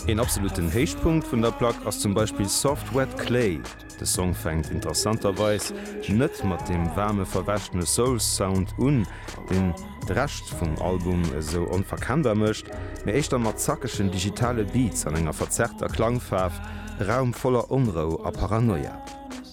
Een absoluten Héichpunkt vun der Plack ass zum Beispill Soft Wet Clay. De Song fänkt interessanterweis net mat deem waarme verwäschene Soul-Sound un, deen de Rescht vum Album esou onverkennbar mécht, mee éischter mat zackegen digitale Beats an enger verzerrter Klangfaarf, e Raum voller Onrou a Paranoia.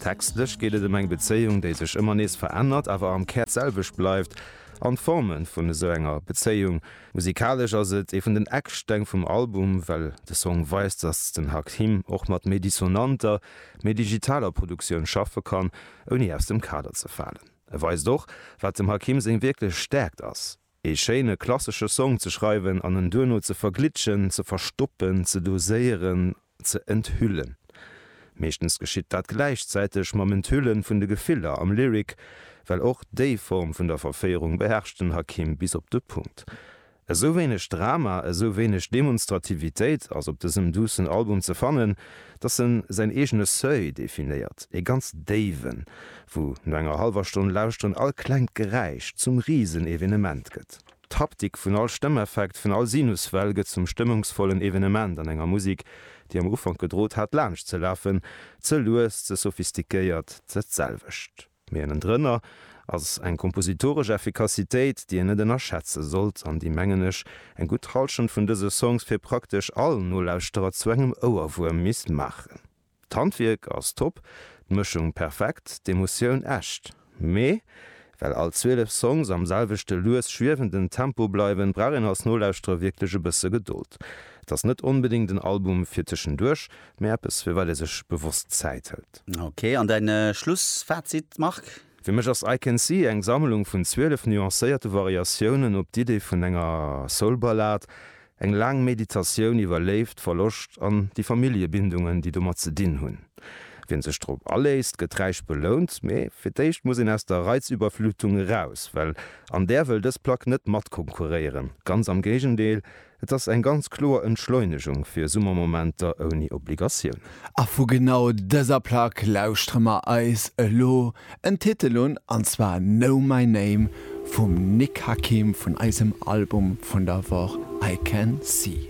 Textlech geet et ëm eng Bezéiung, déi sech ëmmer nees verännert, awer am Kär d'selwecht bleift, an d'Forme vun esou enger Bezéiung Musikalesch ass et ee vun den Ecksteng vum Album, well de Song weist, dass den Hakim och mat méi dissonanter, méi digitaler Produktioun schaffe kann, ouni aus dem Kader ze falen. E weist och, wat dem Hakim seng wierklech Stäerkt ass, ee schéine klassesche Song ze schreiwen an en duerno ze verglitschen, ze verstoppen, ze doséieren ze enthüllen. Meeschtens geschitt dat gläichzäiteg mam Enthülle vun de Gefiller am Lyric, well och déi Form vun der Verféierung beherrscht den Hakim bis op de Punkt. Esou wéineg Drama, esou wéineg Demonstrativitéit ass op dësem duussen Album ze fannen, dass en säin eegene Seuil definéiert, ee ganz déiwen, wou no enger hallwer Stonn lauschteren all klengt Geräisch zum Risenevenement gëtt. D'Haptik vun all Stëmmeffekt, vun all Sinuswell gëtt zum stëmmungsvollen Evenement an enger Musik, déi am Ufank gedrot hat laanscht ze lafen, ze lues, ze sophistiquéiert, dat selwecht, mee ënnendrënner ass eng kompositoresch Effikassitéit, déi een net ënnerschätze sollt an déi, mengen ech, eng gutt Halschent vun dëse Songs fir praktesch all Nolauschterer zu engem Ouerwuerm misst maachen. D'Handwierk ass top, d'Mëschung perfekt, d'Emotioun echt. Mee well all 12 Songs am selwechte lues schwiewenden Tempo bleiwen, brauch een als Nolauschterer wierklech e bësse Gedold. Et ass net onbedéngt en Album fir tëschenduerch, mee eppes firwat ee sech bewosst Zäit hëlt. Ok, an däin Schlussfazit Marc? Fir mech ass I Can See eng Sammlung vun 12 nuancéierte Variatiounen op d'Idee vun enger Soul-Ballad, Eng laang Meditatioun iwwer Léift, Verloscht an déi Familljebindungen, déi domat ze dinn hunn. Wien sech drop aléisst, gëtt räich belount, mee fir d'éischt muss een aus der Reizüberflutung eraus, well an där wëll dës Plack net matkonkurréieren, ganz am Géigendeel, et ass eng ganz kloer Entschleunegung fir Summermomenter ouni Obligatiounen. A vu genau dëser Plack lauschtere mer eis elo en Titel un, an zwar Know My Name vum Nick Hakim vun eisem Album vun der Woch I Can See.